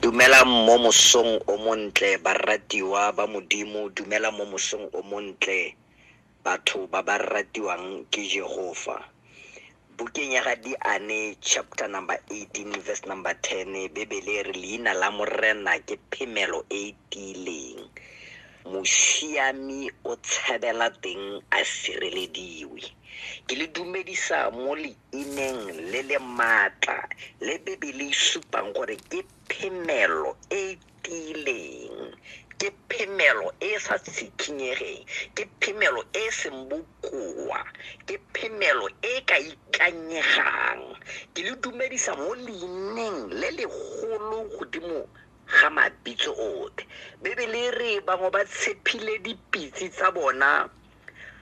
Dumelang mo mosong o montle baratiwa ba Modimo, dumela mo mosong o montle batho ba ba ratiwang ke Jehova. Bukeng ya ga Diane chapter number 18 verse number 10 Bebele re leina la Morena ke phemelo e e tiileng. Mosiami o tshabela teng a sirelediwe. Ke le dumedisa mo e neng le le maatla le Bibele e supang gore ke phemelo e e tiileng, ke phemelo e e sa tshikinyegeng, ke phemelo e e seng bokoa, ke phemelo e e ka ikanyegang. Ke le dumedisa mo leineng le legolo godimo ga mabitso otlhe. Bibele e re bangwe ba tshepile dipitse tsa bona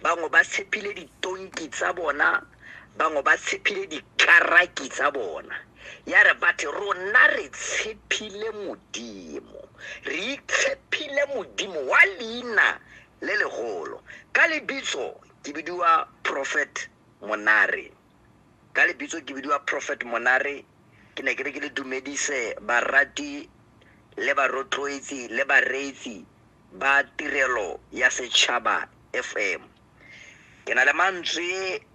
bangwe ba tshepile ditonki tsa bona bangwe ba tshepile dikaraki tsa bona ya re batho rona re tshepile modimo re itshepile modimo wa leina le legolo ka lebitso ke bidiwa prophet monare ka lebitso ke bidiwa prophet monare ke ne ke re ke le dumedise barati le barotloetsi le bareetsi ba tirelo ya setšhaba fm ke na le mantswe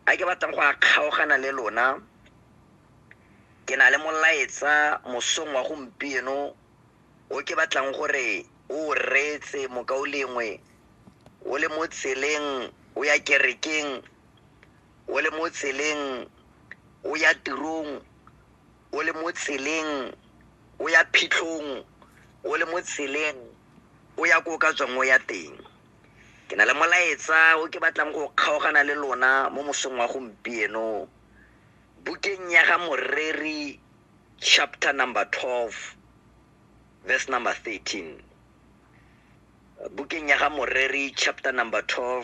a ke batlang go a kgaogana le lona ke na le molaetsa mosong wa gompieno o ke batlang gore o reetse mokao lengwe o le mo tseleng o ya kerekeng o le mo tseleng o ya tirong o le mo tseleng o ya phitlhong o le mo tseleng o ya ko o ka tswang o ya teng ke na le molaetsa o ke batlang go kgaogana le lona mo mosong wa gompieno bukeng ya ga moreri chapter number 12 verse number 13 bukeng ya ga moreri chapter number 12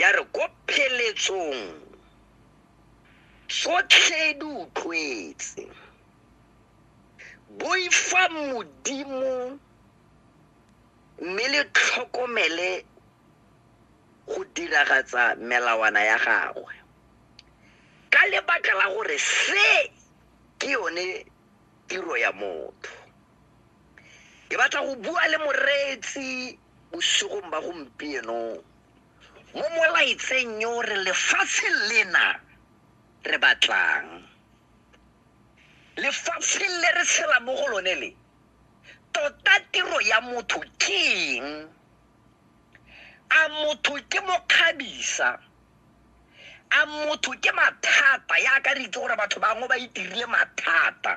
ya re ko pheletsong tsotlhe di utlwetse boifa modimo mme le tlhokomele go diragatsa melawana ya gagwe ka lebaka la gore se ke yone tiro ya motho ke batla go bua le moreetsi bosigong ba gompieno mo molaetseng yo re lefatshe lena re batlang lefatshe le re tshela mo go lone le tota tiro ya motho ke eng a motho ke mokgabisa a motho ke mathata ya ka re itse gore batho bangwe ba itirile mathata